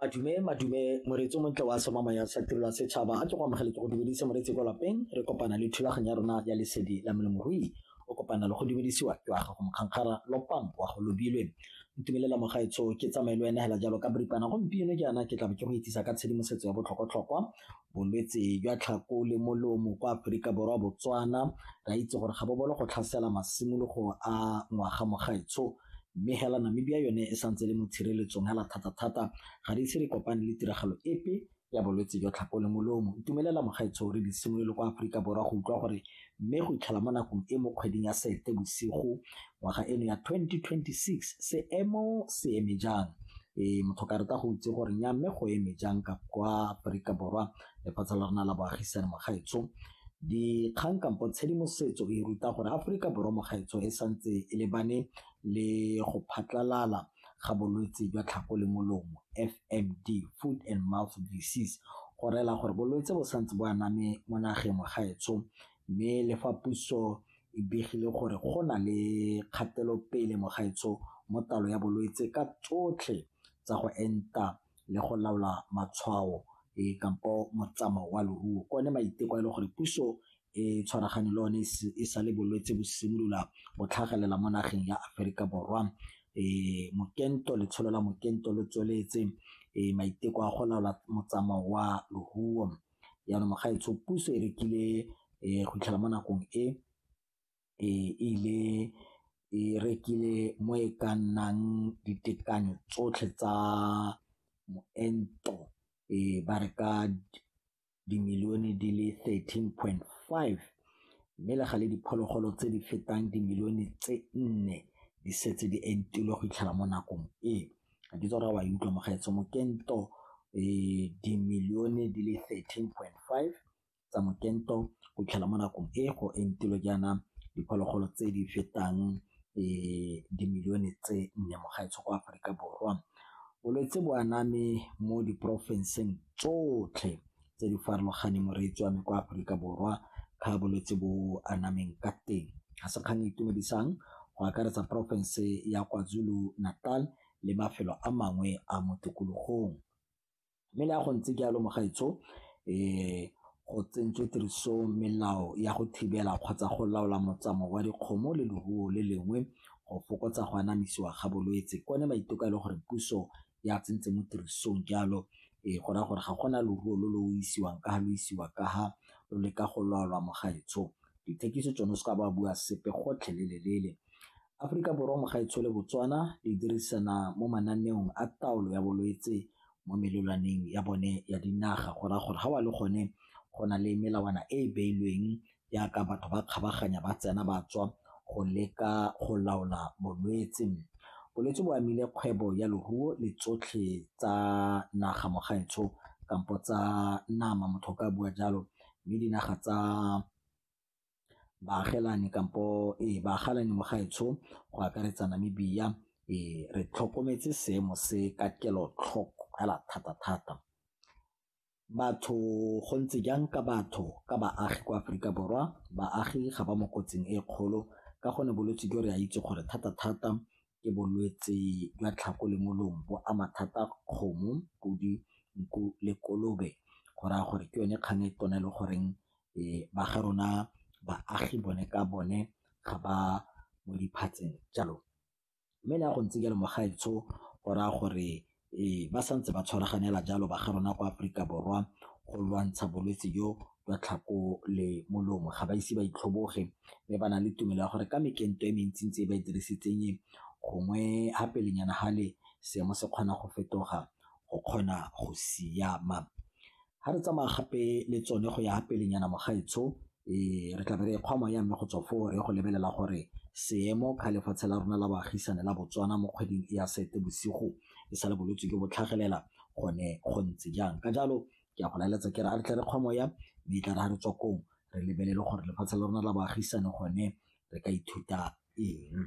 Madume, madume, moreetsi o montle wa somamang ya sa tirelo ya setšhaba a ke go amogele ke go dumedise moreetsi kwa lapeng re kopana le thulaganyo ya rona ya lesedi la molemorui o kopana le go dumedisiwa ke wa gago mokgankgara lopang wa go lobilwe ntumelela mogaetsho ke tsamaye le wena hela jalo ka boripana gompieno ke yana ke tlabe ke go itsisa ka tshedimosetso ya botlhokwatlhokwa bolwetse jwa tlhako le molomo kwa aforika borwa botswana ra itse gore ga bobolo go tlhasela masimologo a ngwaga mogaetsho Mme hela Namibia yone e santse e le mo tshireletsong hela thata-thata, ga di ise di kopane le tiragalo epe ya bolwetse jwa tlhapo le molomo. Ntumelela Mokgaitsho re di simolole kwa Aforika Borwa go utlwa gore mme go itlhela mo nakong e mo kgweding ya Sete bosigo ngwaga eno ya 2026 seemo se eme jang. Ee, motho ka rata go itse gore nya mme go eme jang ka kwa Aforika Borwa lefatshe la rona la boagisane mogaetso dikgang kampo tshedimosetso e ruta gore aforika borwa mogaetso e santse e lebane le go phatlalala ga bolwetse jwa tlhako le molomo fmd food and mouth disease go rela gore bolwetse bo santse bo aname mo nageng mogaetso mme le fa puso e begile gore go na le kgatelopele mogaetso mo talo ya bolwetse ka tsotlhe tsa go enta le go laola matshwao e kampo motsamao wa loruo ko ne maiteko a e le gore puso e tshwaragane le one e sa le bolwetse bo simolola go tlhagelela mo nageng ya Aforika Borwa e mokento letsholo la mokento lo tsweletse e maiteko a go laola motsamao wa loruo jaanong ga etsho puso e rekile e go itlhela mo nakong e e ile e rekile mo e ka nnang ditekanyo tsotlhe tsa moento e ba re ka dimilione di le 13.5 mme le gale diphologolo tse di fetang dimilione tse nne di setse di entilwe go itlhela mo nakong e ga ke tsora wa e utlwa mogaetso mokento um dimilione di le 13.5 tsa mokento go tlhela mo nakong e go entilwe jaana diphologolo tse di fetang um dimilione tse nne mo gaetsho kwa aforika borwa bolwetse bo aname mo diporofenseng tsotlhe tse di farologaneng moreetsi wa me kwa aforika borwa ka bolwetse bo anameng ka teng ga se kgang e itumedisang go akaretsa porofense ya kwazulu natal le mafelo a mangwe a mo tikologong Mme le ha go ntse jalo mogaetsho go tsentswe tiriso melao ya go thibela kgotsa go laola motsamao wa dikgomo le leruo le lengwe go fokotsa go anamisiwa ga bolwetse. Ke one maiteko a e leng gore puso ya tsentse mo tirisong jalo go raya gore ga gona leruo lo lo isiwang ka ha lo isiwa ka ha lo leka go laolwa mogaetsho. Dithekiso tsone o seka ba bua sepe gotlhelele-lele Aforika Borwa mo gaetshole Botswana di dirisana mo mananeong a taolo ya bolwetse mo melelwaneng ya bone ya dinaga go raya gore ga wa le gone go na le melawana e e beilweng jaaka batho ba kgabaganya ba tsena ba tswa go leka go laola bolwetse. Bolwetse bo amile kgwebo ya leruo le tsotlhe tsa naga mo gaetsho kampo tsa nama motho o ka bua jalo mme dinaga tsa baagelani kampo e baagalani mo gaetsho go akaretsa Namibia e re tlhokometse seemo se ka kelotlhoko fela thata-thata. Batho go ntse jang ka batho ka baagi kwa Aforika Borwa, baagi ga ba mo kotsing e kgolo ka gonne bolwetse jo re a itse gore thata-thata ke bolwetse jwa tlhako le molomo bo ama thata kgomo, podi, nku le kolobe go raya gore ke yone kgang e tona le goreng ba ga rona baagi bone ka bone ga ba mo diphatseng jalo mme le ya go ntse jalo mogaetsho o raya gore Ee, ba sa ntse ba tshwaraganela jalo ba ga rona kwa Aforika Borwa go lwantsha bolwetse jo jwa tlhako le molomo. Ga ba ise ba itlhoboge mme ba na le tumelo ya gore ka mekento e mentsi-ntsi e ba e dirisitseng e, gongwe ha pelenyana hale seemo se kgona go fetoga go kgona go siama. ga re tsamaya gape le tsone go ya pelenyana mogaetsho um re tla be re kgwa moya mme go tswa foo re go lebelela gore seemo ka lefatshe la rona la baagisane la botswana mo kgweding e ya sete bosigo e sa le bolwetse jo bo tlhagelela gone go ntse jang ka jalo ke a go laeletsa ke re a re tle re kgwa moya mme e tla re ga re tswa kong re lebelele gore lefatshe la rona la baagisane gone re ka ithuta eng